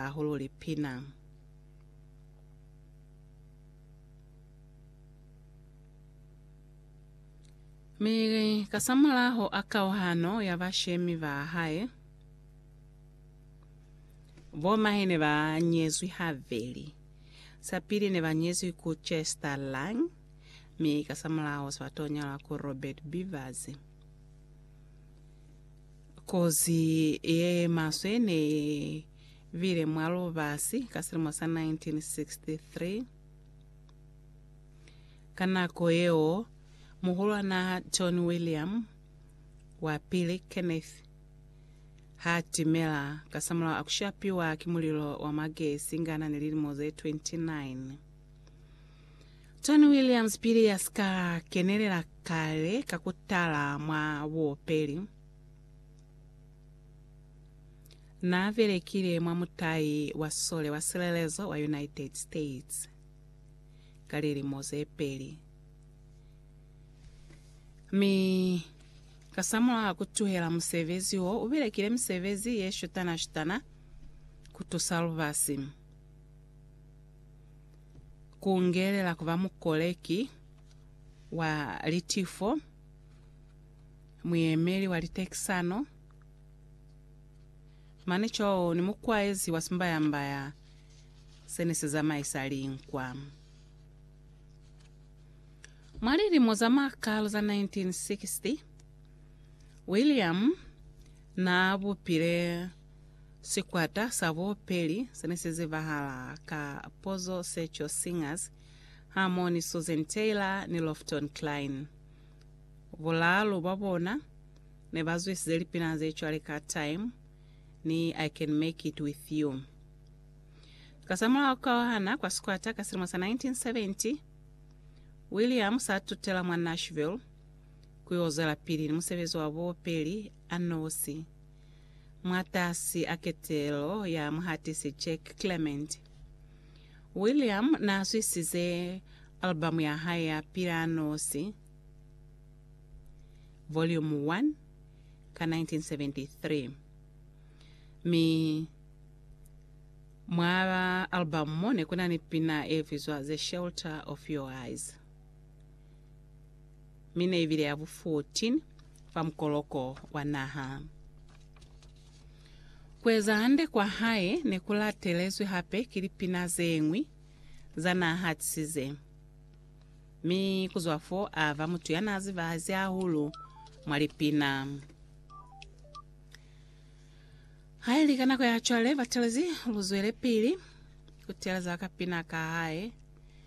hahulu lipina. Mi kasamulaho a kauhano ya bashemi ba hae, bo mahe ne ba nyezwi habeli. Sa pili ne ba nyezwi ku Chester Lang, mi kasamulaho sa to nyalwa ku Robert Beavers. Kozi ye maswe ne bile mwa lubasi ka silimo sa 1963. Ka nako yeo, Muhulwan'a John William wa Pili, Kenneth, ha timela kasamulaho a ku shapiwa ki mulilo wa magesi nga n'a ni lilimo ze 29. Tony Williams pili ya si ka kenelela kale ka ku tala mwa buopeli, n'a belekile mwa mutai wa sole wa silelezo wa United States ka lilimo ze peli, mi kasamulaho ku tuhela musebezi wo, u belekile misebezi ye shutana-shutana ku tusa lubasi. Ku ngelela ku ba mukoleki wa litifo, muyemeli wa litekisano, mane cwalo ni mukwaezi wa simbayambaya se ne si zamaisa linkwa. Mwa lilimo za makalo za 1960, William naa bupile Sikwata sa bupeli se ne si zibahala ka Pozo Secho Singers, Harmony Susan Taylor ni Lofton Klein. Bulaalu bwa bona ne ba zwisize lipina ze cwale ka Time ni I Can Make It With You. Kasamulaho ka ku hana kwa sikwata ka silimo sa 1970, William sa tutela mwa Nashville ku yo zwelapili ni musebezi wa bupeli a nosi. Mwatasi a ketelo ya muhatisi Jack Clement, William n'a zwisize albamu ya hae ya Pila Nosi, Volume 1, ka 1973. Mi mwa albamu mo ne ku na ni pina ye bizwa The Shelter of Your Eyes. mi ne i bile ya bu 14 fa mukoloko wa naha. Ku eza hande kwa hae ne ku latelezwi hape ki lipina ze ñwi za naa hatisize, mi ku zwa fo a ba mutu ya naa zibahazi hahulu mwa lipina. Ha i li ka nako ya cwale, batelezi lu zwelepili ku teeleza kapina ka hae.